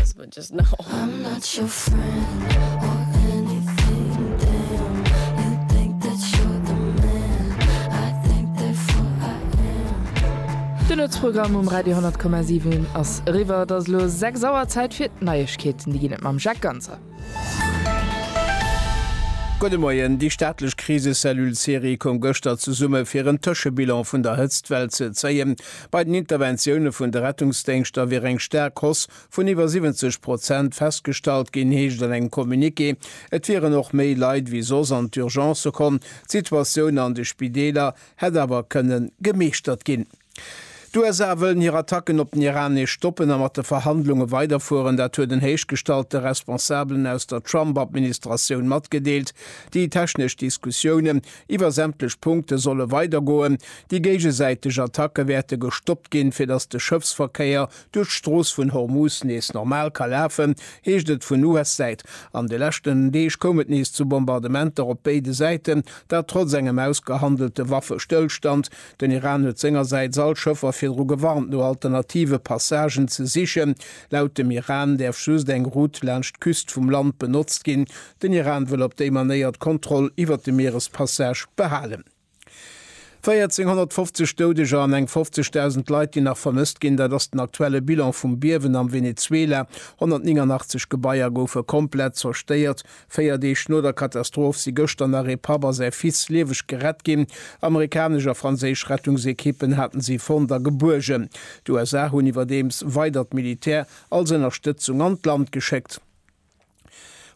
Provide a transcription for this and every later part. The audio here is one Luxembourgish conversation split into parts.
As but just now. I'm not your friend or anything damn You think that you're the man I think therefore I am De Lëtz-Programm um Radio 100,7 ass eriwwer. Et ass elo 6 Auer, Zäit fir d'Neiegkeeten. Déi ginn et mam Jacques Ganzer. Gudde Moien, Déi staatlech Krisecellule Cerie koum gëschter zesumme fir en Tëschebilan vun der Hëtztwell ze zéien. Bei den Interventioune vun de Rettungsdéngschter wier eng staark Hausse vun iwwer 70 Prozent festgestallt ginn, heescht an engem Communiqué. Et wieren och méi Leit wéi soss an d'Urgencë komm. D'Situatioun an de Spideeler hätt awer kënne gemeeschtert ginn. D'USA wëllen hir Attacken op den Iran nees stoppen a mat de Verhandlunge weiderfueren. Dat huet en héichgestallte Responsabelen aus der Trump-Administratioun matgedeelt. Déi technesch Diskussioune Iwwer sämtlech Punkte solle weidergoen. Déi géigesäiteg Attacke wäerte gestoppt ginn, fir datt de Schëffsverkéier duerch d'Strooss vun Hormuz nees normal ka lafen, heescht et vun US-Säit. An de leschten Deeg koum et nees zu Bombardementer op béide Säiten, dat trotz engem ausgehandelte Waffestëllstand. Den Iran huet sengersäits all Schëffer virdru gewarnt, no alternative Passagen ze sichen. Laut dem Iran däerf just eng Route laanscht d'Küst vum Land benotzt ginn, Den Iran wëll op déi Manéier d'Kontroll iwwert de Mierespassage behalen. 1.450 Doudeger an eng 50.000 Leit, déi nach vermësst ginn, dat ass den aktuelle Bilan vum Biewen am Venezuela. 189 Gebaier goufe komplett zerstéiert. Véier Deeg no der Katastroph si gëschter nach ee Papp a säi Fils lieweg gerett ginn. Amerikanesch a franséisch Rettungsekippen haten si fonnt a gebuergen. D'USA hunn iwwerdeems weidert Militär als Ënnerstëtzung an d'Land geschéckt.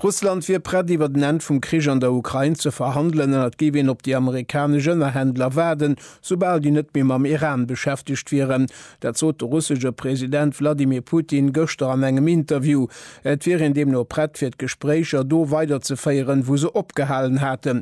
Russland wier prett iwwert en Enn vum Krich an der Ukrain ze verhandelen an et géif een op déi amerikanesch Ënnerhändler waarden, soubal déi net méi mam Iran beschäftegt wieren. Dat sot de russesche President Wladimir Putin gëschter an engem Interview. Et wier een deemno prett fir d'Gespréicher do weiderzeféieren, wou se opgehalen haten.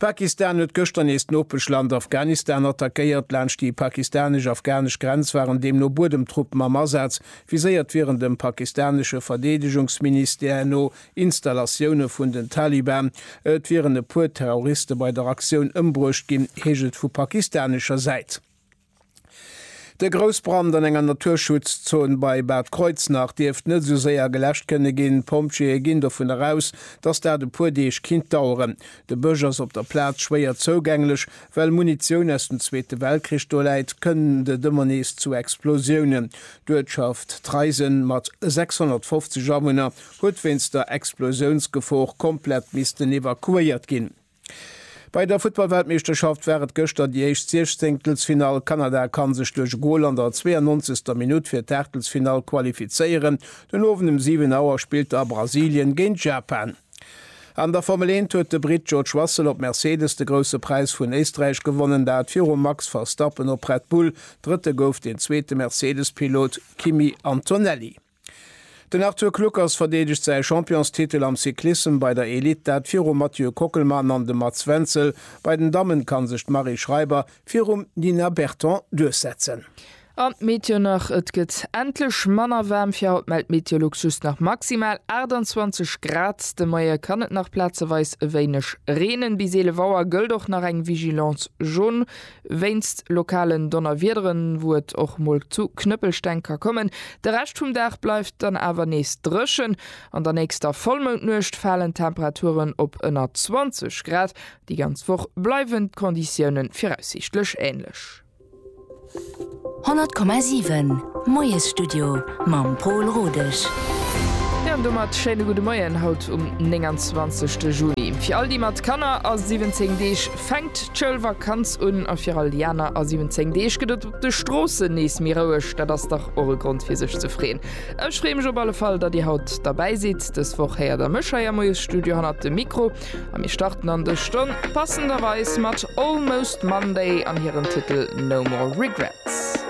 Pakistan huet gëschter nees d'Nopeschland Afghanistan attackéiert. Laanscht déi pakistanesch-afghanesch Grenz waren deemno Buedemtruppen am Asaz. Viséiert wieren dem pakistanesche Verdeedegungsministère no Installatioune vun den Taliban. Et wieren e puer Terroriste bei der Aktioun ëmbruecht ginn, heescht et vu pakistanescher Säit. De Groussbrand an enger Naturschutzzon bei Bad Kreuznach dierft net esou séier geläscht kënne ginn. D'Pompjeeë ginn dovun eraus, dass dat e puer Deeg kinnt daueren. De Bësch ass op der Plaz schwéier zougänglech. Well Munitioun aus dem Zweete Weltkrich do läit, kënnt et ëmmer nees zu Explosiounen. D'Uertschaft Treisen mat 650 Awunner huet wéinst der Explosiounsgefor komplett missten evakuéiert ginn. Bei der Futtballweltmeeschterschaft war et gëschter déi éischt Siechzéngtelsfinall. Kanada kann sech duerch e Gol an der 92. Minutt fir d'Aachtelsfinall qualifizéieren. Den Owend um 7 Auer spillt da Brasilien géint Japan. An der Formel 1 huet de Britt George Russell op Mercedes de Grousse Präis vun Éisträich gewonnen, dat virum Max Verstappen op Red Bull. Drëtte gouf den zweete Mercedes-Pilot Kimi Antonelli. Den Arthur Kluckers verdeedegt säi Championstitel am Cyclissem bei der Elite, dat virum Mathieu Kockelmann an dem Mats Wenzel. Bei den Dammen kann sech d'Marie Schreiber virum Nina Berton duerchsetzen. An d'Meteo nach, Et gëtt endlech manner waarm. Fir haut mellt Meteolux just nach maximal 28 Grad. De Moie kann et nach plazeweis e wéineg reenen. Bis 11 Auer gëllt och nach eng Vigilance jaune. Wéinst lokalen Donnerwiederen, wou et och mol zu Knëppelsteng ka kommen. De Rescht vum Dag bleift dann awer nees dréchen. An der nächster Vollmoundnuecht falen d'Temperaturen op ënner 20 Grad. Déi ganz Woch bleiwen d'Konditioune viraussiichtlech änlech. 100,7 Moiesstudio mam Pol Rodesch. Jo an domat schéine gudde Moien haut um 29 Juni. Fir all déi mat Kanner a 17 Deeg fänkt d'Schoulvakanz un a fir all déi aner a 17 Deeg gëtt et op de Stroossen nees méi roueg. Dat ass dach och e Grond fir sech ze freeën. Ech freeë mech op alle Fall, datt Dir haut derbäi sidd. Dës Woch héiert Der mech hei am Moiesstudio hannert dem Mikro. A mir starten an dës Stonn passenderweis mat Almost Monday an hirem Titel No More Regrets.